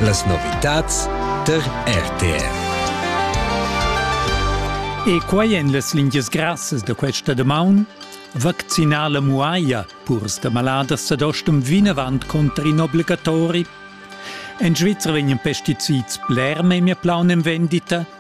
Las novitads tar RTR. E quai en las lingias grassas da questa damaun. Vaccinar la muaia purs da maladas ad ostum vinavant contra in obbligatori. En Svizzera vegnan pesticids bler memia plaun en vendita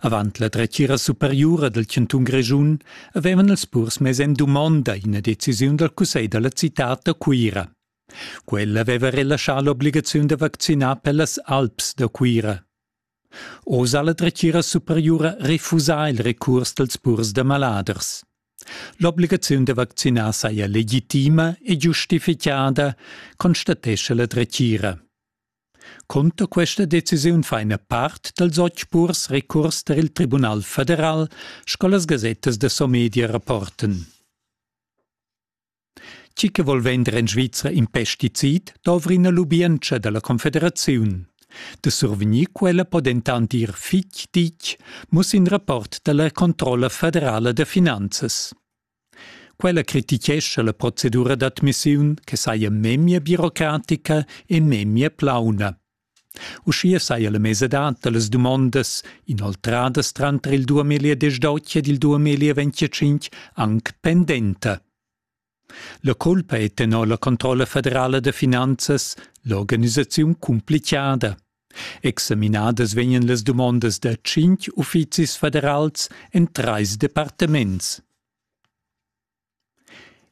Avant la dretgira superiura dal chantun Grischun avevan els purs mess en dumonda ina decisiun dal cussegl da la citad da Cuira. Quella aveva relaschà l'obligaziun da vaccinar per las Alps da Cuira. Oz ha la dretgira superiura refusà il recurs dals purs da maladers. L'obligaziun da vaccinar saja legitima e giustificada, constatescha la dretgira. Cunter questa decisiun fa ina part dals otg purs recurs tar il Tribunal federal, sco las gasettas da Somedia rapportan. Tgi che vol vender en Svizra in pesticid dovri ina lubientscha dalla Confederaziun. Da survegnir quella po dentant ir fitg ditg, muss in rapport dalla Controlla federala da finanzas. Quella critichescha la procedura d'admissiun che saja memia birocratica e memia plauna. Uschia saja la mesadad da las dumondas inoltradas tranter il 2010 ed il 2025 anc pendenta. La culpa è tenor la controlla federala da finanzas l'organisaziun cumplichada. Examinadas vegnan las dumondas da tschintg uffizis federals en trais departaments.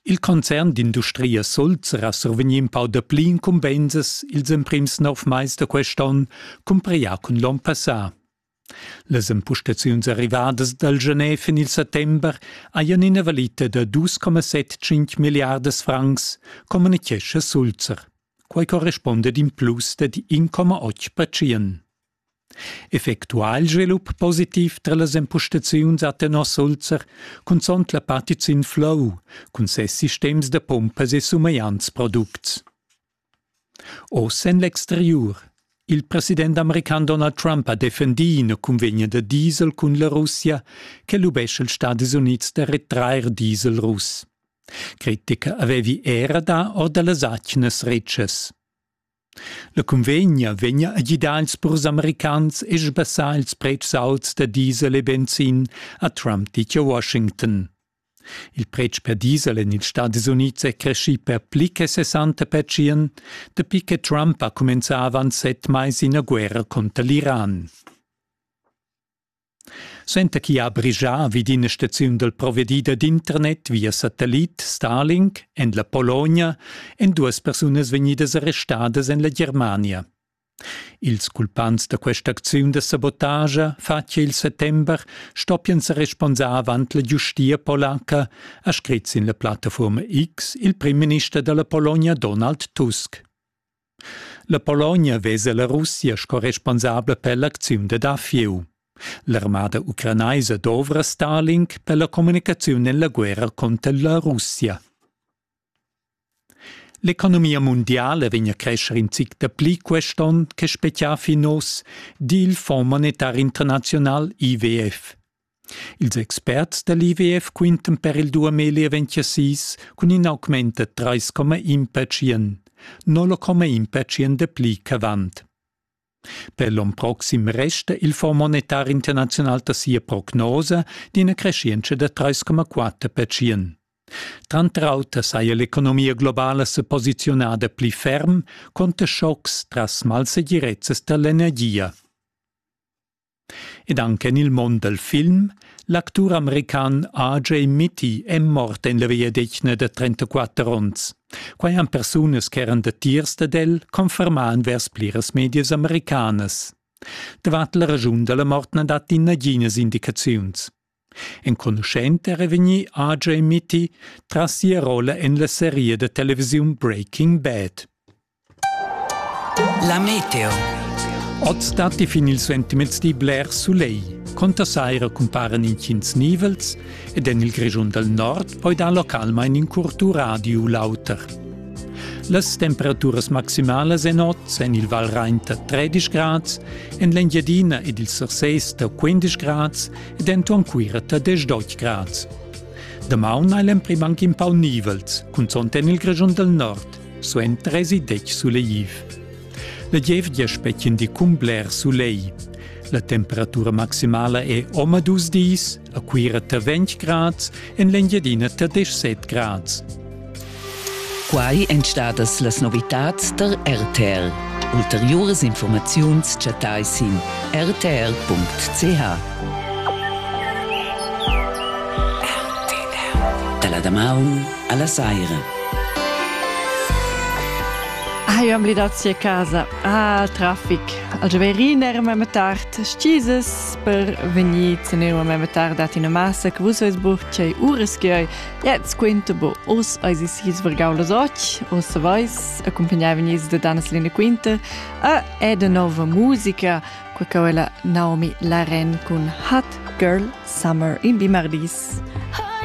Il concern d'industria Sulz era survegnì in pau dapli incumbensas ils emprims nov mais da quest'onn cumparià cun l'onn passà. Las empustaziuns arrivadas dal Genève en il settember hajan ina valita da 2,75 milliardas francs, communitgescha Sulzer. Quai correspunda ad in plus da 1,8 percent. Effectuà il svilup positiv tra las empustaziuns a tenor Sulzer, cunzont la partiziun Flow cun ses sistems da pumpas e sumegliants products. Oz en l'exteriur. Il president american Donald Trump ha defendì ina cunvegna da diesel cun la Russia che lubescha ils Stadis Unids da retrair diesel russ. Critica avevi era dà or da las atgnas retschas. La cunvegna vegna a gidar ils purs americans e sbassar ils pretschs auts da diesel e benzin, ha Trump ditg a Washington. Il pretsch per diesel en ils Stadis Unids è creschì per pli che 60 pertschient, dapi che Trump ha cumenzà avant set mais ina guerra cunter l'Iran. Suenter chi ha brigià vid ina staziun dal provedida d'internet via satellit Starlink en la Pologna èn duas persunas vegnidas arrestadas en la Germania. Ils culpants da questa acziun da sabotagia fa che il settember stoppian sa responsar avant la giustia polaca, ha scrit sin la plattafurma X il primminister da la Pologna Donald Tusk. La Pologna vesa la Russia sco responsabla per l'acziun da dafieu. L'armada ucranaisa dovra Stalin per la comunicaziun en la guerra conter la Russia. L'economia mundiala vegn a crescher in zic dapli quest onn che spezià fin oz, di il Fonds monetar internaziunal IWF. Ils experts da l'IWF quintan per il 2026 cun in augment da 3,1%, 0,1% dapli ch'avant. Per l'onn proxim resta il Fonds monetar internaziunal da sia prognosa d'ina creschientscha da 3,4 percient. Tranter auter saja l'economia globala sa posiziunada pli ferm conter schocks tras malsegirezzas da l'energia. Ed anche nel mond del film, l'actur american R.J. Mitty è mort en la vegliadetgna da 34 onns. Quai han persunas che eran datiers dad el confermà vers pliras medias americanas. Davart la ragiun dalla mort na dat naghinas indicaziuns. Enconuschent era vegnì Ajay Mitty tras sia rolla en la seria da televisiun Breaking Bad. La meteo. Oz datti fin ils sentiments di bler sulegl. Conta saira cumparan intgins nivels ed en il Grischun dal nord poi dar localmain in curtu radio u l'auter. Las temperaturas maximalas en oz en il Valrain da 13 grads, en l'Engiadina ed il Surses da 15 grads denton cuira da 10 grads. Damaun ha l'emprim anc in pau nivels, cunzont en il Grischun del Nord, suen 30 suleiv. La gievgia spetgien di cun bler sulei. La temperatura maximala è oma dus dis, a Cuira ta 20 grads, en l'Engiadina ta 17 grads. Quai èn stadas las novitads tar RTL. Ulteriuras informaziuns chattai sin rtr.ch. Da la damaun a la saira. Hai am lidazzi a casa al traffic. Al gioverin era mema tard stises per vegnir tenere mema tard dat ina massa che vus veis bucht cei uras che Jetzt quinta bo, us eis is his vargau las och, us vais, accompagnaven is da Daneslina Quinta, a è de nova musica, qua quella Naomi Laren cun Hot Girl Summer in Bimardis.